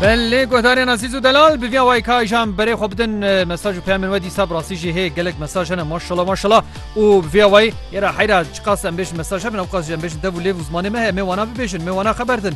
Belê guhdarên Azîz û Delal bi vîya wayî ka îjan berê xwe bidin mesaj û peyamên we dîsa bi rastî jî hê gelek mesaj hene maşala maşala û bi vîya wayî êra heyra çi qas em bêjin mesaj hebin ew qas jî em bêjin dev û lêv û zimanê me heye em ê wana bibêjin em ê wana xeber din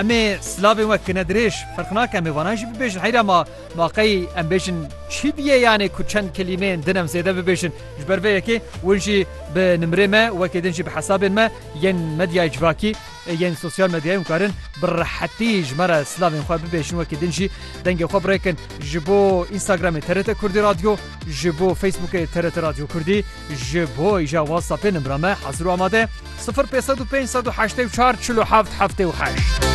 em ê silavên we kine dirêj ferq nake em ê wana jî bibêjin heyra ma ma qey em bêjin çi bîye yanê ku çend kelîmeyên din em zêde bibêjin ji ber vê yekê win jî bi nimrê me wekê din jî bi hesabên me yên medyayê civakî Yên sosyal medyayê hûn karin bi rehetî ji me re silavên xwe bibêjin wekî din jî dengê xwe birêkin ji bo Instagramê TRT Kurdî Radyo, ji bo Facebookê TRT Radyo Kurdî, ji bo îja Whatsappê nimra me hezir û amade ye, sifir pênc sed û pênc sed û heştê û çar çil û heft heftê û heşt.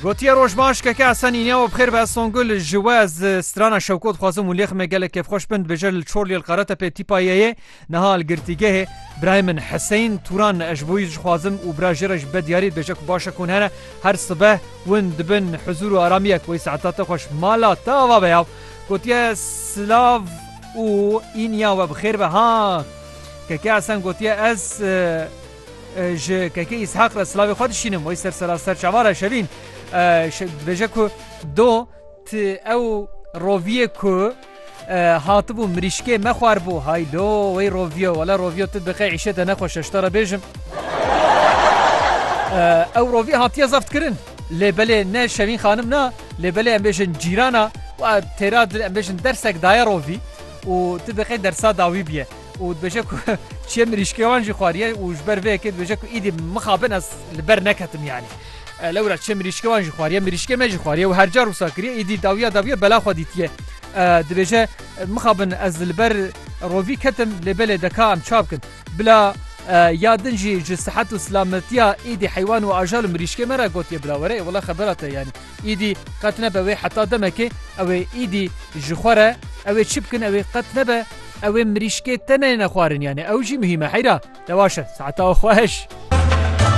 Gotiye roj baş keke Esen îniya we bixêr be Songul ji we ez strana Şewko dixwazim û lêximê gelek kêfxweş bin dibêje li Çorliyê li Qaretepê tîpa yeyê Niha li girtîgehê birayê min Hiseyn Turan ne ez ji bo wî dixwazim û bira jê re ji be diyarî dibêje ku baş e ku hene her sibeh win dibin huzûr û aramiyek wê saeta te xweş mala te ava be ya gotiye silav û îniya we bi xêr be ha Keke Esen gotiye ez ji Keke Îshaq re silavê xwe dişînim wê ser seraser çavar e şevîn dibêje ku do ti ew roviyê ku Hatibû mirîşkê me xwarbû. Hay lo wey Rovio. Wele Rovio tu diqe îşê te nexweş e ji te re bêjim. Ew Rovî hatiye zeftkirin. Lê belê ne Şevîn xanim na lê belê em bêjin cîrana wa têra em bêjin dersek daye Rovî û tu diqe dersa dawî bîye. û dibêje ku çiyê mirîşkê wan jî xwariye û ji ber vê yekê dibêje ku îdî mixabin ez li ber neketim yanî. Lewra çiyê mirîşkê wan jî xwariye, mirîşkê me jî xwariye û hercar wisa kiriye îdî dawiya dawiya bela xwe dîtiye. Dibêje mixabin ez li ber rovî ketim lê belê deka em çav kin. Bila ya din jî ji sihet û silametiya îdî heywan û ajal û mirîşkê me re gotiye bila were ê wele xebera te yanî. Îdî qet nebe wê heta demekê ew ê îdî ji xwe re ew ê çi bikin ew ê qet nebe ew ê mirîşkê te neyêne xwarin yanî ew jî muhîm e heyra te waş e saeta xweş.